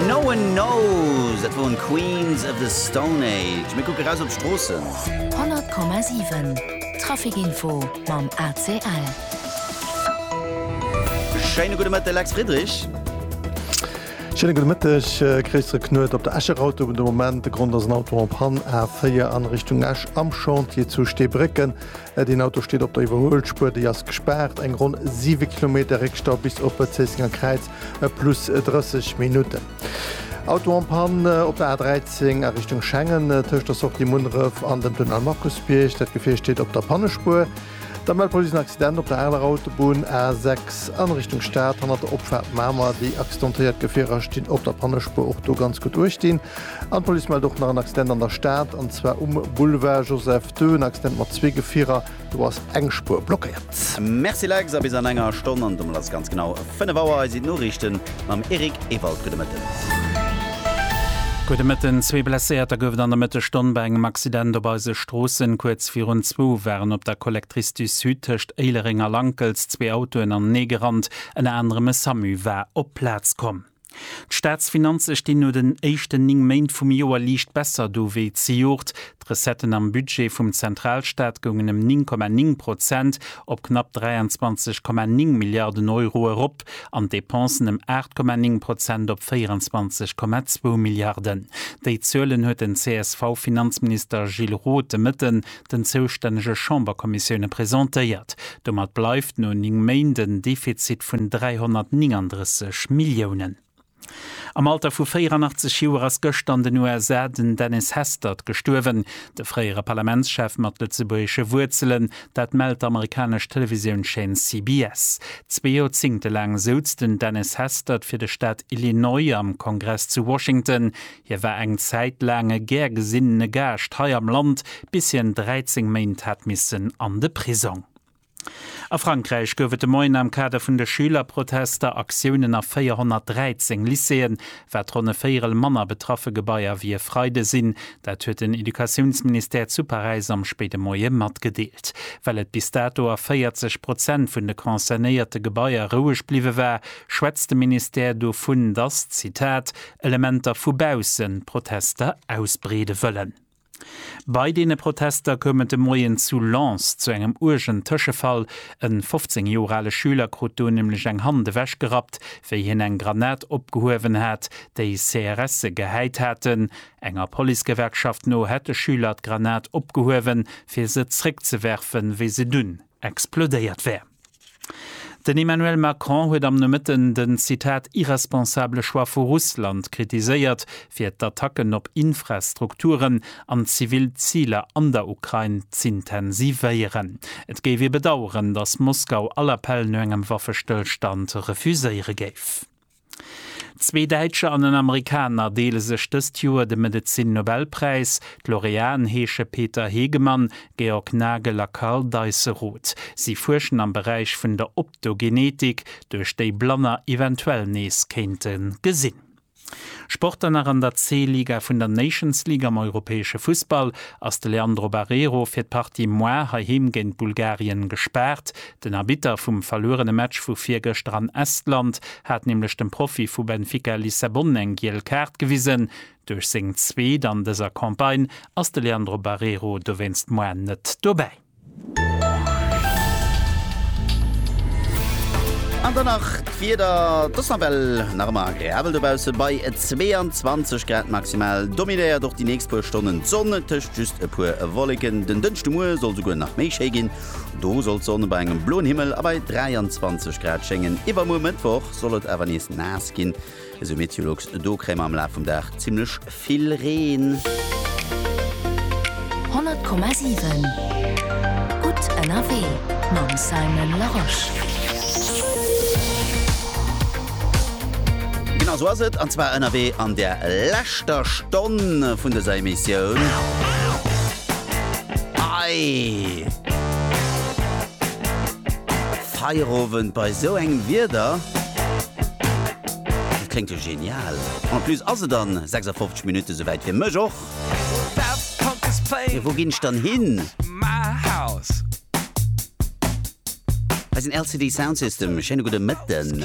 No one knows, dat woren Queens of the Stone Age. Mir kucke raus op d'Stroossen. 100,7 Traficinfo mam ACL. Schéine gudde Mëtteg, Lex Friedrich. Schéine gudde Mëtteg, Christel Knuet. Op der Escher Autobunn de Moment. De Grond ass en Auto en panne, A4 an Richtung Esch am Chantier zu Steebrécken. Deen Auto steet op der Iwwerhuelspuer, déi ass gespaart. Eng ronn 7 Kilometer Réckstau bis op d'Zéissenger Kräiz, plus 30 Minutten. Auto en panne op der A13 a Richtung Schengen, tëscht der Sortie Munneref an dem Tunnel Markusbierg. Dat Gefier steet op der Pannespuer. Da mellt d'Police en Accident op der aler Autobunn A6 a Richtung Stad, hanner der Opfaart Mamer. Déi accidentéiert Gefierer stinn op der Pannespuer, och do ganz gutt uechtdinn. An d'Police mellt och nach en Accident an der Stad, an zwar um Boulevard Joseph Döen Accident mat zwee Gefierer, do ass eng Spuer blockéiert. Merci Lex, a bis an enger Stonn, an domat ass et ganz genau 5 Auer, eis iwt Noriichten mam Eric Ewald. Gudde Mëtten. Gudde Mëtten. Zwee Blesséierter gouf et an der Mëttesstonn bei engem Accident op eise Stroossen. Kuerz virun zwou waren op der Collectrice du Sud tëscht Éilereng a Lankels zwee Autoen aneneegerannt. Ënner anerem e Samu war op d'Plaz komm. D'Staatsfinanze stinn no den éischten 9 Méint vum Joer liicht besser do wéi zejoert. D'Recetten am Budget vum Zentralstaat goungen ëm 9,9 Prozent op knapp 23,9 Milliarden Euro erop an d'Depensen ëm 8,9 Prozent op 24,2 Milliarden. Déi Zuelen huet den CSV-Finanzminister Gilles Roth de Mëtten den zoustännege Chamberkommissioune presentéiert. Domat bleift no 9 Méint en Defizit vun 339 Milliounen. Am Alter vu 84 Joer ass gëschter an den USA den Dennis Hastert gestuerwen. De fréiere Parlamentschef mat lëtzebuergesche Wuerzelen, dat mellt d'amerikanesch Televisiounschäin CBS. Zwee Joerzéngte laang souz den Dennis Hastert fir de Staat Illinois am Kongress zu Washington. Hie war eng Zäit laang e gär gesinnene Gaascht hei am Land, bis hien 13 Méint hat missen an de Prisong. A Frankräich gouf et de Moien am Kader vun de Schülerprotester Aktiounen a 413 Lycéeën. Wat ronn e Véierel manner betraffe Gebaier wéi e Freide sinn, dat huet den Educatiounsministère zu Paräis am spéide Moie matgedeelt. Well et bis dato a 40 Prozent vun de concernéierte Gebaier roueg bliwwe war, schwätzt de Ministère dovun, datt, Zitat, Elementer vu baussen Protester ausbreede wëllen. Bei deene Protester koum et de Moien zu Lens zu engem uergen Tëschefall. E 15 Joer ale Schüler krut do nämlech eng Hand ewech gerappt, wéi hien eng Granat opgehuewen hat, déi CRSe gehäit haten. Enger Policegewerkschaft no hätt de Schüler d'Granat opgehuewen, fir se zréckzewerfen, wéi se dunn explodéiert wär. Den Emmanuel Macron huet am Nomëtten den, Zitat, irresponsable Choix vu Russland kritiséiert, fir d'Attacken op Infrastrukturen an zivil Ziler an der Ukrain z'intensivéieren. Et géif ee bedaueren, datt Moskau all Appell no engem Waffestëllstand refuséiere géif. Zwee Däitscher an en Amerikaner deele sech dëst Joer de Medezin-Nobelpräis. D'Laureaten heesche Peter Hegemann, Georg Nagel a Karl Deisseroth. Si fuerschen am Beräich vun der Optogenetik, duerch déi Blanner eventuell nees kéinte gesinn. Sport an nach an der C-Liga vun der Nations League am europäesche Fussball ass de Leandro Barreiro fir d'Partie muar heiheem géint Bulgarien gespaart. Den Arbitter vum verluerene Match vu virgëschter an Estland hat nämlech dem Profi vu Benfica Lissabon eng giel Kaart gewisen. Duerch seng zweet an dëser Campagne ass de Leandro Barreiro dowéinst moar net dobäi. An dann nach d'Wieder, Et ass nawell nach ëmmer agreabel dobausse bei 22 Grad. Maximal dominéiert och déi nächst puer Stonnen d'Sonn, tëscht just e puer Wolleken. Den Dënschdemuer soll souguer nach méi schéi ginn. Do soll d'Sonn bei engem bloen Himmel a bei 23 Grad schéngen. Iwwermuer Mëttwoch soll et awer nees naass ginn, esou Meteolux. Do kréie mer am Laf vum Dag zimmlech vill Reen. 100,7 gutt ënnerwee mam Simon Larosche. Genau sou ass et, an zwar ënnerwee an der leschter Stonn vun dëser Emissioun. Ei! Feierowend bei esou engem Wieder? Dat kléngt jo genial! En plus ass et an 56 Minutten souwäit, fir mech och. Mee wou ginn ech dann hin? Hei sinn LCD Sound System. Schéine gudde Mëtten.